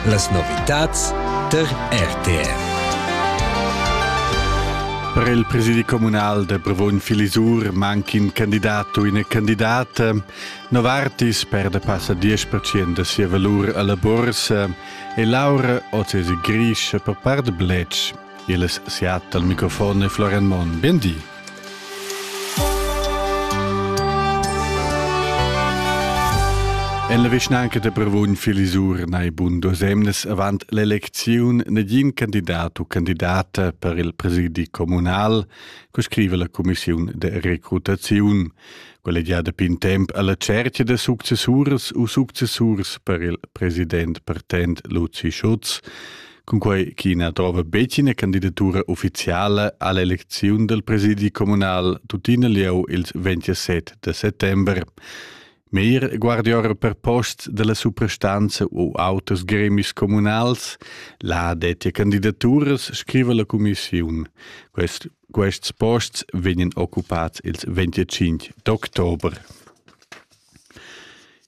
Las novitads tar RTR. Per il presidi communal de Brevogn Filisur manca in candidat u ina candidata. Novartis perde passa 10% da sia valur alla borsa e Laura oz es grischa per part bletsch. Il es siat dal microfon e Florian Monn. Biendi. En la vischnanca da Brevon Filisur nei bun duas emnes avant l'elecziun negin candidat u candidata per il presidi communal, co scrive la commissiun de recrutaziun. Collegiada pin temp alla cerchia de successurs u successurs per il president partent Luzi Schutz, cunquei ch'i na trova betg ina candidatura ufficiala all'elecziun del presidi comunal tuttina lieu ils 27 de settembre. Meir guardior per posts della suprastanza u auters gremis comunals, la dettia candidaturas scriva la commissiun. Quest, quests posts vegnan occupats ils 25 d'october.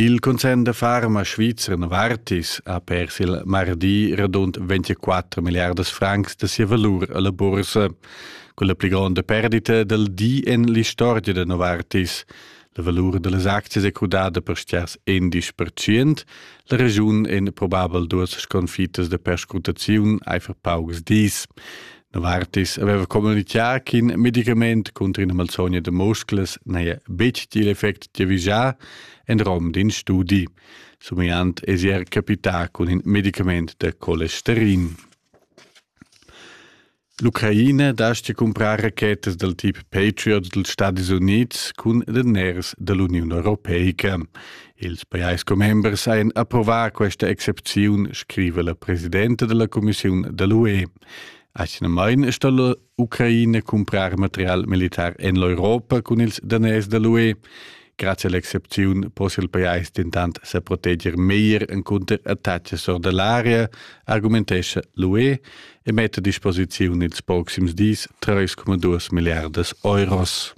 Il concern da farma svizzer Novartis ha pers il mardi radund 24 milliardas francs da sia valur alla bursa. Con la pli gronda perdita dal di en l'istorgia da Novartis. La valur dallas aczias è crudada per stiars 11%. La regiun en probabel duas sconfitas de perscrutaziun eifer paucs dis. Novartis aveva communitgà ch'in medicament cunter ina malsogna da musclas n'haja betg il effect giavischà en rom d'in studi. Somigliant èsi er capità cun in medicament da colesterin. L'Ucraina dastga cumprar rachetas dal tip Patriot dals Stadis Unids cun daners da l'Uniun Europeica. Ils pajais commembers hajan approvà questa excepziun, scriva la presidenta della Commissiun da l'UE. Atgnamain è stalla Ucraina cumprar material militar en l'Europa cun ils daners da l'UE. Grazie all'excepziun possia il pajais dentant sa proteger meglier encunter attacks or da l'area, argumentescha l'UE e metta a disposiziun ils proxims dis 3,2 milliardas euros.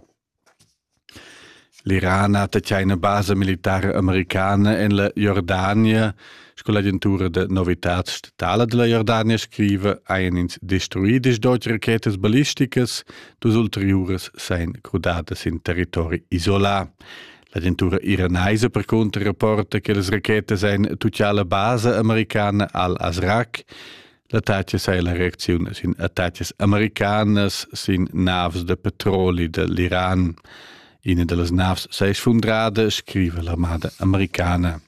L'Iran ha tatgà ina basa militara americana en la Jordania. Sco l'agentura da novitads statala da la Jordania scriva, hajan ins destruì diesch deutsche rachetas ballisticas, dus ulteriuras sajan crudadas sin territori isolà. L'agentura iranaisa percunter rapporta che las rachetas ein tutgà la basa americana al-Azraq. L'attacas è la reacziun sin attacas americanas sin navs de petroli de l'Iran. Ina de las navs sei sfundrada, scrive l'armada americana.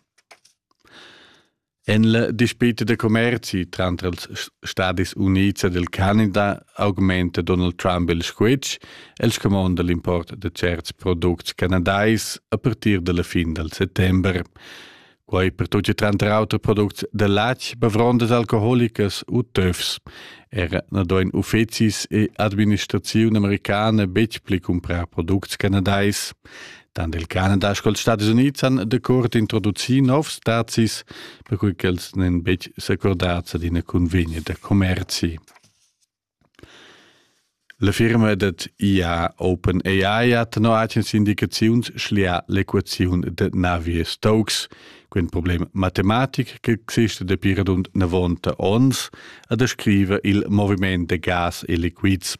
En la dispute de commerci tranter els Stadis Units ed il Canada augmenta Donald Trump il squitsch, el scomonda l'import de certs products canadais a partir della fin del settember. Quai per tut tranter auter products da latg, bavrondas alcoholicas u töfs. Era na doin uffecis e administraziun americana betg pli cumprar products canadais. Tant il Canada sco ils Stati Unids han decord introducì novs stazis, per cui ch'els n'en betg s'accordats ad ina convegna da commerzi. La firma dad IA OpenAI ha tenor agens indicaziuns schlià l'equaziun dad navier Stokes, quin problem matematic ch'exista dapi radund 90 onns e descriva il moviment da gas e liquids.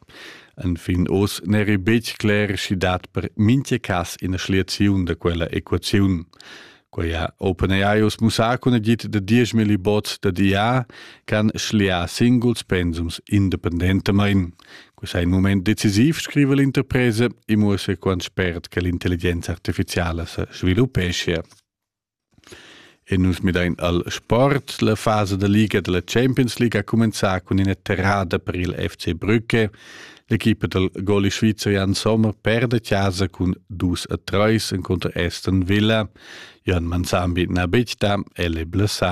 Enfin oz n'eri betg cler sch'i dat per mintga cas ina schliaziun da quella equaziun. Quei ha OpenAI mussà cun agid da 10.000 bots da DA can schliar singuls pensums independentamain. Quei è in moment decisiv, scrive l'interpresa, e muossa quant spert che l'intelligenza artificiala se sviluppescia. E nus midain al sport. La fase da liga della Champions League ha cumenzà cun ina terrada per il FC Brücke. L'equipa del goli svizzer Jan Sommer perde casa cun dus a treis encunter Aston Villa. Jan Manzan bit na betda, el è blessà.